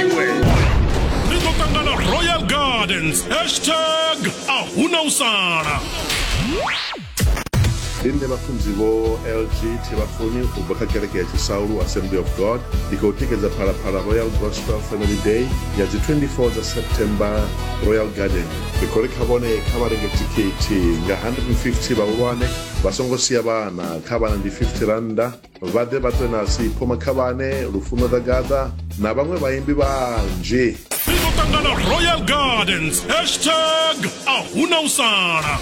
iwe ri ḓo ṱangana royal gardens hashtag a huna u sala ndi nṋe vhafunzi vho lg thivhafuni u bva kha kereke ya tshisaulu assembly of god ndi khou tikedza phalaphala royal gospel family day ya dzi 24 dza september royal garden ri khou ri kha vhone kha vha renge thikhithi nga 150 vhahulwane vha songo sia vhana kha vhana ndi 50 rannda vha ḓe vha ṱwe na sipho makhavhane lufuno ḓa gaḓa na vhaṅwe vhaimbi vhanzhi ri ḓo ṱangana royal gardens hashtag a huna u sala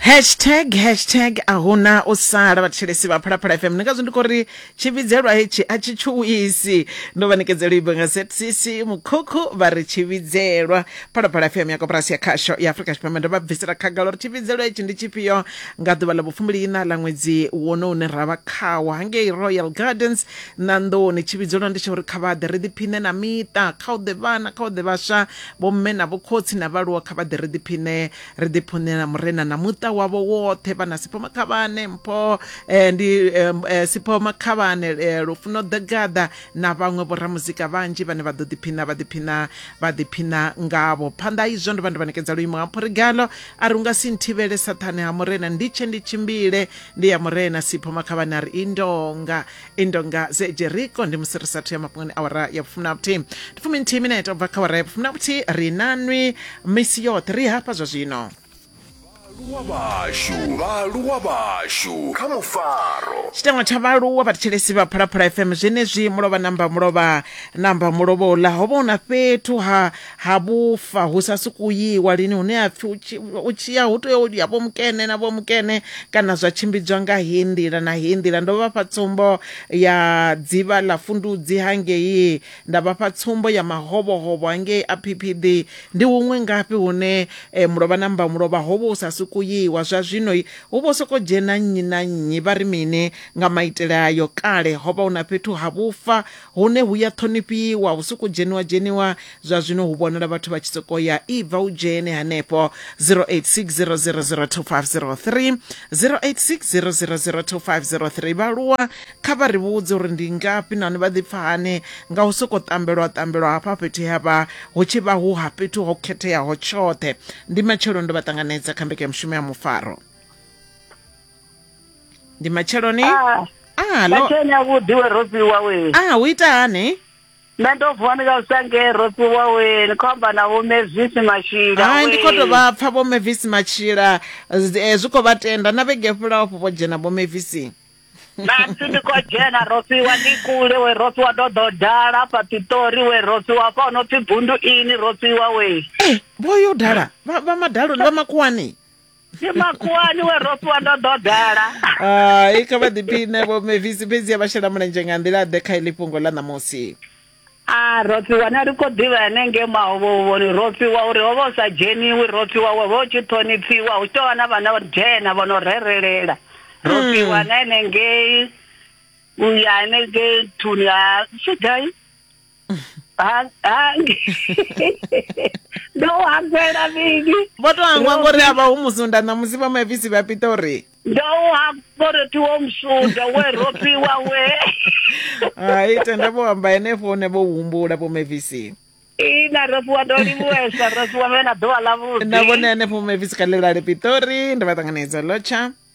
hashtag hashtag a huna u sala vhathetshelesi vha phalaphala fm ndi ngazwo ndi khou ri tshivhidzelwa hetshi a tshi tshuwisi ndo vha nekedzela ibo nga zcc mukhukhu vha ri tshivhidzelwa phalaphala fm ya koporasi ya khasho ya afrika tshipembe ndo vha bvisela khagala uri tshivhidzelwa hetshi ndi tshifhio Nga ḓuvha ḽa vhufumbiliiṋa ḽa ṅwedzi wono une ra vha khawo hangei Royal Gardens Ṋanḓoni, tshivhidzolo ndi tsha uri kha vha ḓe ri ḓiphiṋe na miṱa, kha hu ḓe vhana, kha hu ḓe vhaswa, vhomme na vhokhotsi na vhaaluwa, kha vha ḓe ri ḓiphiṋe, ri ḓiphuṋe na Murena na muṱa wavho woṱhe. Vhana, Sipho Makhavhane, Mpho eh, ndi eh, eh, Sipho Makhavhane, eh, Lufuno Ḓagaḓa na vhaṅwe vhoramuzika vhanzhi vhane vha ḓo ḓiphiṋa vha ḓiphiṋa vha ḓiphiṋa ngavho. Phanḓa ha izwo ndo vha ndo vha ṋekedza luimo ha Mphurigalo a ri unga si nthivhele saṱhane ha murena ndi tshe ndi tshimbile ndi ya murena sipho makhavhani a ri indonga indonga ze jeriko ndi musi ri sathu ya mafhungoni awara ya vhufumi na vhuthihi ndi fumi nthihi minete u bva kha awara ya vhufumi na vhuthihi ri nanwi misi yoṱhe ri hafha zwa zwino vhaaluwa vhashu vhaaluwa vhashu kha mufaro tshiteṅwa tsha vhaaluwa vhathetshelesi vha phalaphala fm zwenezwi mulovha namba mulovha namba mulovha uḽa ho vha hu na fhethu ha ha vhufa hu sa sokou yiwa lini hune ha pfhi u tshi- u tshi ya hu tea u ya vho mukene na vho mukene kana zwa tshimbidzwa nga heyi nḓila na heyi nḓila ndo vhafha tsumbo ya dzivha ḽa fundudzi hangei nda vhafha tsumbo ya mahovhohovho hangei a phiphiḓi ndi huṅwe ngafhi hune eh, mulovha na mbamulovha ho vha hu sa sokou yiwa zwa zwino i, hu vho sokou dzhena nnyi na nnyi vha ri mini nga maitele ayo kale ho vha hu na fhethu ha vhufa Hune hu ya ṱhonifhiwa, hu sokou dzheniwa-dzheniwa. Zwa zwino hu vhonala vhathu vha tshi sokou ya, Ibva u dzhene henefho. 0860002503, 0860002503. Vhaaluwa kha vha ri vhudze uri ndi ngafhi nahone vha ḓipfa hani nga u sokou ṱambelwa-ṱambelwa hafha fhethu he ha vha hu tshi vha hu ha fhethu ho khetheaho tshoṱhe. Ndi matsheloni ndo vha ṱanganedza kha mbekanyamushumo ya Mufaro. ndi matsheloni ah, ah, lo... matsheloni avhuḓi we rosi wawe ah, u ita hani nṋe ndo vuwa ndi nga usange rosi wawe ni khou amba na vhomevisi matshila hai ndi khou tou vha pfa vhomevisi matshila eh, zwi khou vha tenda na vhege fhulaho fho vho dzhena vhomevisi nasi ndi khou dzhena rosiwa ndi kule we rosiwa ndo ḓo dala fha ṱiṱori we rosiwa fha no pfi bundu ini rosiwa we eh, vho yo dala vha madaloni vha makuwani ndi makuwani we ro fhiwa ndo ḓo dala hai kha vha ḓiphine vho mevisi fhedzi a vha shela mulenzhe nga nḓila ḓe kha iḽi fhungo ḽa ṋamusi a ro fhiwa na ri khou ḓivha hanengei mahovhovhoni ro fhiwa uri ho vha u sa dzheniwi ro fhiwa wo vha u tshi ṱhonipfiwa hu tshi tou vha na vhana vha dzhena vho no rerelela ro fhiwa na henengei u ya henengei nthuni ha tshigai ndo hafhela vhingi vho to hangwa ngori a vha hu musunda ṋamusi vha mavisi vha pita uri ndo u hafha uri ti wo musunda we ropiwa we hai tenda vho amba henefho hune vho humbula vho mavisi ina ropiwa ndo livhuwesa ropiwa me na ḓuvha ḽa vhuḓi na vhone henefho mavisi kha ḽilale pitori ndi vha ṱanganedza lotsha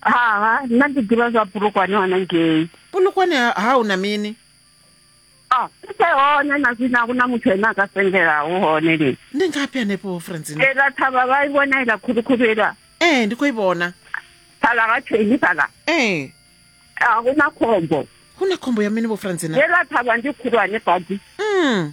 ha nna ndi ḓivha zwa bulukwane hone ngei bulukwane ha u na mini a kuthe hone na zwino a ku na muthu ene a ka sengelaho hone lini ndi ngafhi hanefho francina ela thavha vha i vhona ila khulukhulu ila ee ndi khou i vhona fhala ga theni fhala ee a ku na khombo hu na khombo ya mini vho francina ela thavha ndi khulwane badi mm.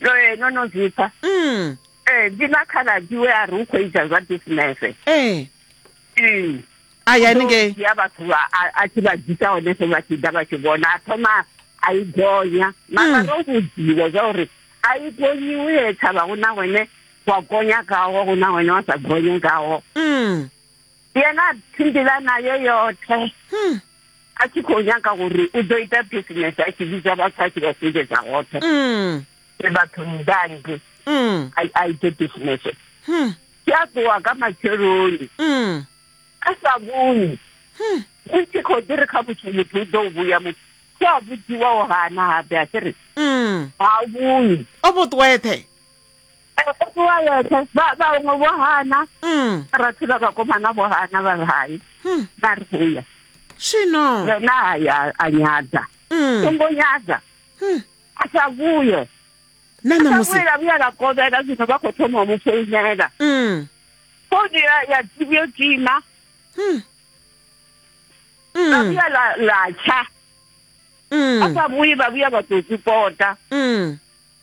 ee no no zwi pfa mm. ee eh, ndi na khaladzi we a ri u khou ita zwa bisinese ee eh. a ya ninge ya vhathu a tshi vha dzisa hone so vha tshi ḓa vha tshi vhona a thoma a i gonya mara mm. ro vhudziwa zwa uri a i gonyiwi he tshavha hu na hone wa gonya kawo hu na hone wa sa gonye kawo mm. yena a tshimbila nayo yoṱhe hmm. a tshi khou nyanga uri u ḓo ita bisinese a tshi vhidza vhathu a tshi vha sumbedza hoṱhe hmm. e vhathu ndangi hmm. a ite bisinese tshi a ṱuwa ka matsheloni a sa vhuni u tshi khou ḓi ri kha muthu muthu u ḓo u vhuya muthu tshi a vhudziwaho hana habe a tshi ri ha vhuni o vhuṱweṱhe Ndi wa yeṱhe vha vhaṅwe vho hana Mm. rathi vha vhakomana vho hana vha ri hai Hmm. vha ri huya Zwino. yena hayi a- a nyadza Mm. songo nyadza Hmm. a sa vhuye Na a sa ṋamusi. vhuye la vhuya la kovhela zwino vha khou thoma u mu founela Mm. founu ya ya yo tima Hmm. la Mm. vhuya la la tsha a Mm. sa vhuyi vha vhuya vha tou kupota Mm.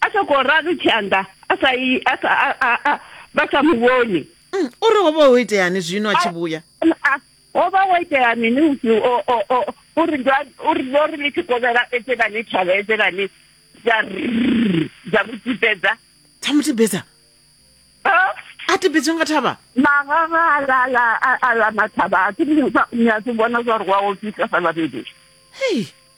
a sokou ralo tshanḓa a sa i a sa a- a- a- vha sa mu vhoni Mm, o ri ho vha ho iteani zwino a tshi vhuya Ah, ho vha wo itea mini usi o- o- o- o ri ndo- o ri ndo ri ni tshi kovhela edzelani thavha edzelani dza rrrr, dza vhutipedza dza mu tibedza Ah, a tibedzwe nga thavha magaga a la- a la- a- a la mathaba a ke ni sa- ni a se bona gore wa ofisa sa babedi hei